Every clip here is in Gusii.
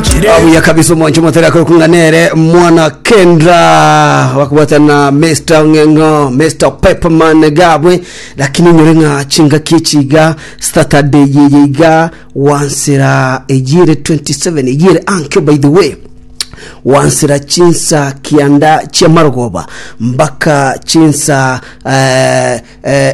Abuya kabisa omwancho motari akorokung'a nere mwana kendra wakubwata na Mr. Ng'eng'o Mr. Pepperman gabwe lakini nyore ng'a chingaki echiga Saturday yeye iga wansira eyere 27 eyere ankyo by the way wansira chinsa kianda chiamarogoba mpaka chinsa eh,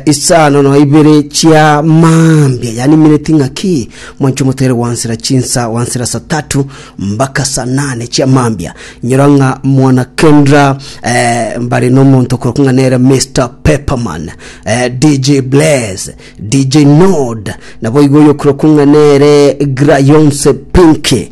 Isano na ibere chia mambia yanimineti ng'a ki, mwanche omotere gwansera chinsa gwansera sa tatu mbaka sa nane chia mambia. Inyora ng'a mwana Kendra eh, mbare nomonto okorokwa ng'a nere Mr. Pepperman, eh, DJ Blaze, DJ Nod, naboigo oyokorokwa ng'a nere Grayonse Pinky,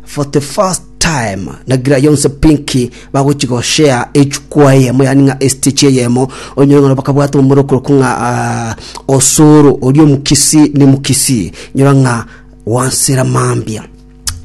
For the first time nagira yonse pinki bagochi go share echukua eyemo yani ng'a estechi eyemo onyore ng'a bakabwata omorokoroko ng'a ah, osoro orio omukisi ni mukisi nyora ng'a wansera mambia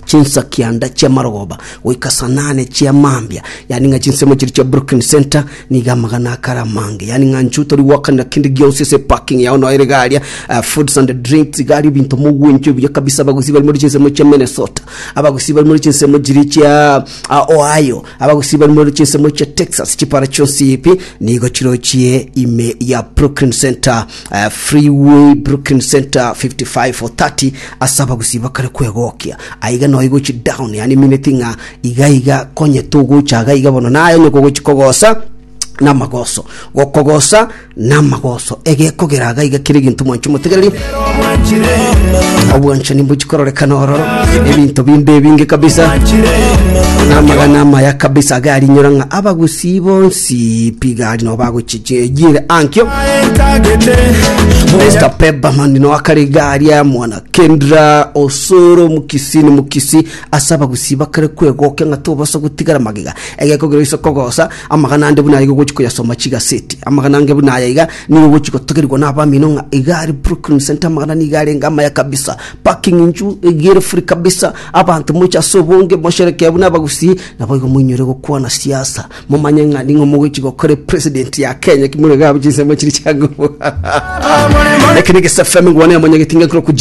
chinsa kianda chiamarogoba goika sanane chiamambia yani ng'a chinsemo chiri chia brooklyn center Nigo amagana akare amange, yaani ng'a inchuo tori goakanera kende gionsi ase eparking yao noyo erige aria, eh, foods and drinks, iga aria ebinto mogwenchwa ebuya kabisa, abagusii bari mori chinsemo chia Minnesota, abagusii bari mori chinsemo chiria chia ah, Ohio, abagusii bari mori chinsemo chia Texas, chipara chionsi ebi nigo chirochie ime ya Brooklyn Center, eh, Freeway Brooklyn Center 55 or 30 ase abagusii bakare kwegokia aiga noyo igochi down, yaani emineti ng'a Igaiga konye togocha iga iga bono naye onye kogochi kogosa namagoso gokogosa namagoso egekogera iga iga kere gintu mwanchi motegereri obwanchani mbochikororekana oro ebinto bimbe ebinge kabisa namagana amaya kabisa agarinyora ng'a abagusi bonsi pigari no bagochichiejire ankio Mr. Peberman no akare gari ya mwana Kendra Osoro mukisi ni mukisi Ase abagusii bakare kwegokia ng'a tobasa gotigara magega, egeko kero iso kogosa amagana ande buna aya iga ogochi koyasoma chigaseti. Amagana ange buna aya iga nigo ogochi gotogerigwa n'abamino ng'a iga are Brooklyn Center amagana nigo arenge amaya kabisa. Parking inchu iga ere free kabisa. Abanto moche ase obonge mosherekee buna abagusii naboigo moinyore gokwana siasa momanye ng'a ning'o mogochi gokora epresident ya Kenya ki more iga abwo chinsemo chiri chiangobo. Eke negesafemi ngwane amanyageti ng'ekorokwa Jim